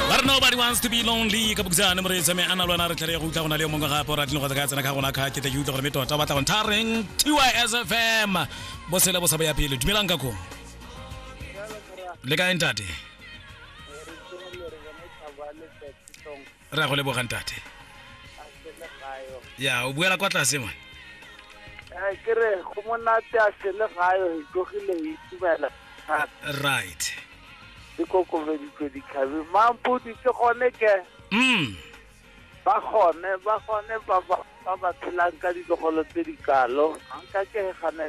ba re nobody wants to be lonely ka bokisane moreetsa me a na lwana re tlhare ya go utlwa go na le yo mongwe gape o ratile go tsaka tsena ka gona kga ke tle ke utlwa gore me tota o batla go nthareng tys fm bosele bo sa bo ya pele dumelang ka kong le kae ntate re ya go lebogang tate ya o buela kwa tlase ngwane eh, ke re go monate a sele gayo e tlogile e itumela right di kokobeditswe dikgabe mampodi ke gone ke mm. ba gone ba gone ba ba tshelang ka ditlogolo tse di kalo anka ke gane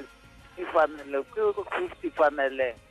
ke fanele ke fifty faneleng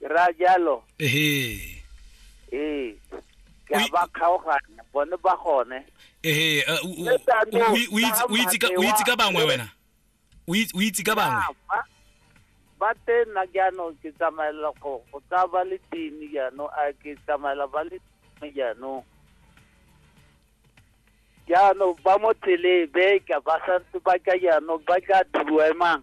ke raya jalo ehe ee ke a ba kgaoganya bone ba gone ehe uh, u- u- u- u itse- u itse ka- u itse ka bangwe wena o itse- o itse ka bangwe Ya, ba- ba teng nna jaanong ke tsamaela go go tsaya ba le tini jaanong a ke tsamaela ba le tini jaanong jaanong ba mo tseleng beka ba santse ba ka jaanong ba ka thuemang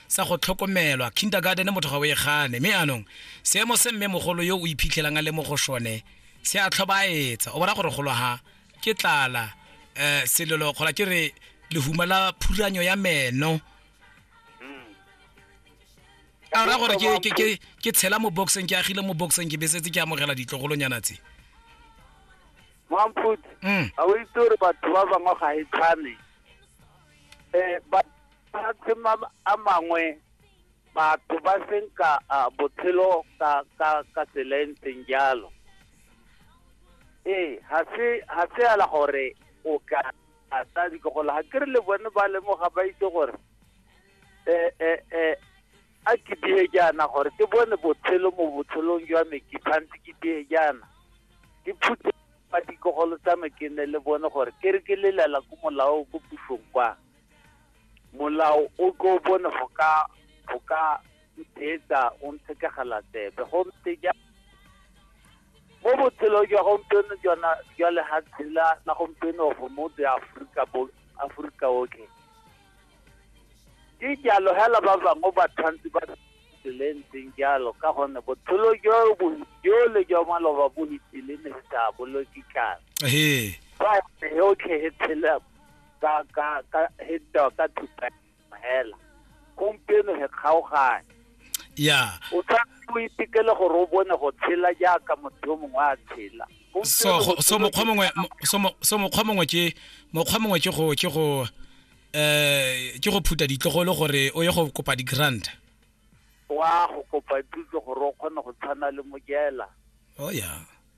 sa go tlhokomelwa kindergarten motho ga o e gane mme anong seemo se mme mogolo yo o iphitlhelang a le mo go sone se a tlhobaetsa o bona gore golo ha ke tlala um selelo kgola ke re lehuma la phuranyo ya meno a ra gore ke- ke- ke- ke tshela mo boxeng ke agile mo boxeng ke besetse ke amogela ditlogolonyana tse mamphuti Mm. a o itse gore batho ba bangwe ga e tshwane um mafatshe a mangwe batho ba senka uh, botshelo ka ka ka tsela e ntseng jalo ee ga se ga se ala gore o ka ata dikogolo ga ke re le bone ba lemoga ba itse gore eh eh eh a ke die jaana gore ke bone botshelo mo botshelong jwa me ke tshwanetse ke die jaana ke phutse ba dikogolo tsa me ke ne le bone gore ke re ke lelela ko molao ko pusong kwa molao o tlo bone go ka go ka ithetsa o ntshekegela tsebe gompe ja mo botshelong jwa gompieno jona jwa lehatshe la la gompieno go mo the aforika bo aforika otlhe ke jalo hela ba bangwe ba tshwanetse ba tselentseng jalo ka gonne botshelo jo bo jole jwa maloba bo itile ne se sa boloke tlana fa yotlhe e tshela ka ka ka heta ka thupa hela gompieno he kgaogane ya o tshwanetse o itekele gore o bone go tshela jaaka motho yo mongwe a tshela so so mokgwa mongwe so mokgwa mongwe ke mokgwa mongwe ke go ke go eh ke go phuta ditlogolo gore o ye go kopa di grant wa go kopa thuso gore o kgone go tshwana le mojela oh ya